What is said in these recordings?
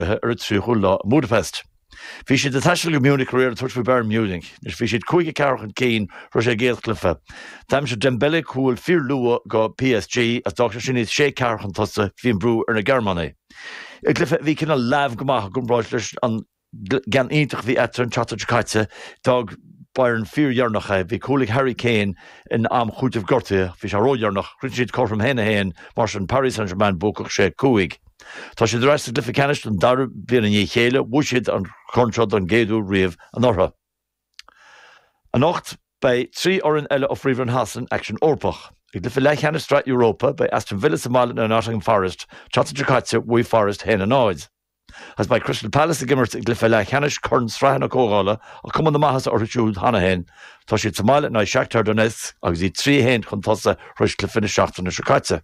ar an tríochadú lá i mBudapest. Bhí siad ag taisteal go Munich aréir ag tabhairt faoi Bayern Munich. Anois bhí siad cúig a ceathair chun cinn thar éis a gcéad chluife. D'aimsigh Dembele cúl fíor luath do PSG agus d'fhág sé sin iad sé ceathair chun tosaigh. Bhí an brú ar na Gearmánaigh. I gcluife a bhí cineál leamh go maith i gcomparáid leis an gceann iontach a bhí eatarthu an tseachtain seo caite, d'fhág Bayern fíor dheireanach é. Bhí cúl ag Harry Kane in am cúitimh gortuithe. Bhí sé ró dheireanach. Rinne siad cothrom haon a haon. Mar sin Paris Saint Germain buacach sé cúig. Tá siad ar ais sa gcluiche ceannais don dara bliain i ndiaidh a chéile, bhuaigh siad an corn seo don gcéad uair riamh anuraidh. Anocht, beidh trí fhoireann eile ó Phríomhroinn Shasana in aicsean Eorpach. I gcluiche leathcheannais Sraith Europa, beidh Aston Villa sa mbaile in aghaidh Nottingham Forest, tseachtain seo caite, bhuaigh Forest 1, 0. Agus beidh Crystal Palace ag imirt i gcluiche leathcheannais Chorn Sraithe na Comhdhála, ach cuma na maitheasa orthu siúd cheana féin, tá siad sa mbaile in aghaidh Shakhtar Donetsk agus iad trí, a haon, chun tosaigh thar éis chluiche na seachtaine seo caite.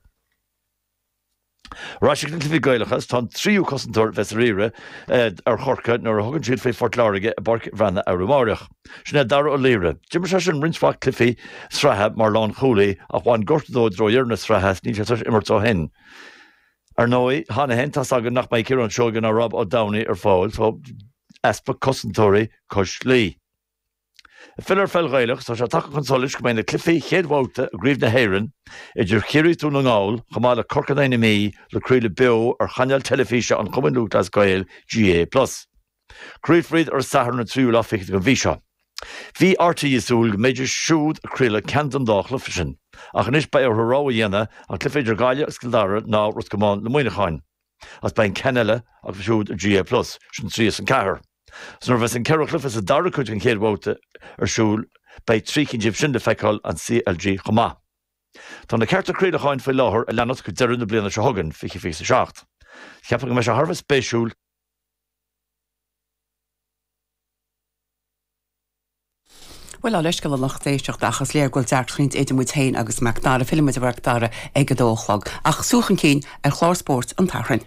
Ar ais chuig na cluichí Gaelacha agus tá an tríú cosantóir a bheas ar iarraidh ar Chorcaigh nuair a thugann siad faoi Phort Láirge i bPáirc an Bhreathnaigh arú amárach. Sin é Dara Ó Laoire. D'imir seisean roinnt mhaith cluichí sraithe mar lánchúlaí ach bhain gortú dó i dtreo dheireadh na sraithe agus níl sé tar éis imirt ó shin. Ar ndóigh, cheana féin, tá's againn nach mbeidh Ciarán Seoige ná Rob Ó Domhnaigh ar fáil, tá easpa cosantóirí cois Laoi. Filleadh ar pheil Ghaelach, tá sé tagtha chun solais go mbeidh na cluichí chéad bhabhta i gCraobh na hÉireann idir Chiarraí Dún na nGall chomh maith le Corcaigh in aghaidh na Mí le craoladh beo ar chainéal teilifíse an Chumainn Lúthchleas Gael, GAA plus. Craolfar iad ar an Satharn an tríú lá fichead den mhí seo. Bhí rte ag súil go mbeidís siúd ag craoladh ceann den dá chluiche sin, ach anois beidh orthu rogha a dhéanamh, an cluiche idir Gaillimh agus Cill Dara nó Ros Comáin in aghaidh Muineacháin. is beidh an ceann eile acu siúd ar GAA plus, sin trí as an ceathair. So nuair a bheas an ceithre chluiche sa dara cuid den chéad bhabhta ar siúl beidh trí cinn díobh sin le feiceáil an CLG chomh maith. Tá na cearta craolacháin faoi láthair a leanas go deireadh na bliana seo chugainn, fiche fiche a seacht. Cheapfainn go mbeidh sé thar a bheith spéisiúil. Bhuel, ár leithscéal leis an lucht éisteachta, ach is léir go bhfuil deacracht eicínt idir muid féin agus Macdara. Fillfidh muid ar Mhacdara ag a dó a chlog. Ach súil chun cinn ar chlár spóirt an tSathairn.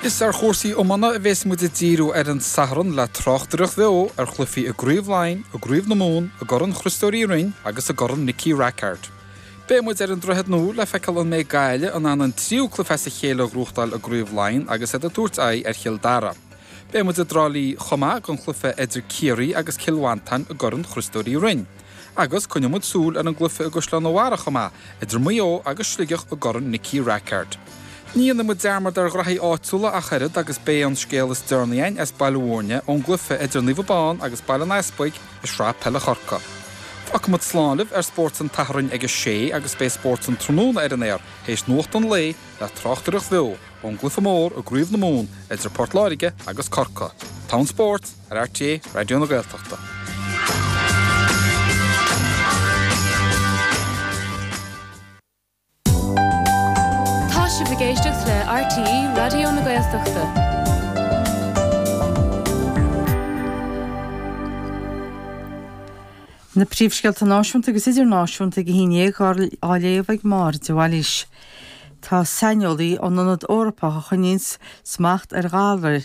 Is ar chúrsaí iomána a bheas muid ag díriú ar an Satharn le tráchtaireacht bheo ar chluichí i gCraobh Laighean, i gCraobh na Mumhan, i gCorn Chriostóir Uí Rinn agus i gCorn Nicky Rackard. Beidh muid ar an Droichead Nua le feiceáil an mbeidh Gaillimh in ann an tríú cluiche as a chéile a ghnóthachtáil i gCraobh Laighean agus iad ag tabhairt aghaidh ar Chill Dara. Beidh muid i dTrá Lí chomh maith don chluiche idir Ciarraí agus Cill Mhantáin i gCorn Chriostóir Uí Rinn. Agus coinneoidh muid súil ar an gcluiche i gCaisleán an Bharraigh chomh maith, idir Maigh Eo agus Sligeach i gCorn Nicky Rackard. Ní dhéanfaidh muid dearmad ar ghraithí áitiúla ach oiread agus beidh an scéal is deireanaí againn as Baile Mhúirne ón gcluiche idir Naomh Abán agus Baile an Easpaig, i Sraith Peile Chorca. Fágfaimid slán libh ar Spórt an tSathairn ag a sé agus beidh Spórt an Tráthnóna ar an aer théis nuacht an lae le tráchtaireacht bheo ón gcluiche mór i gCraobh na Mumhan idir Port Láirge agus Corca. Rannóg Spóirt ar RTÉ Raidió na Gaeltachta. Tá sibh ag éisteacht le RTÉ Raidió na Gaeltachta. Na príomhscéalta náisiúnta agus idirnáisiúnta ag a haon dhéag á léamh ag Máire de Bhailís. Tá saineolaí ón Ionad Eorpach a choinníonn smacht ar ghalraí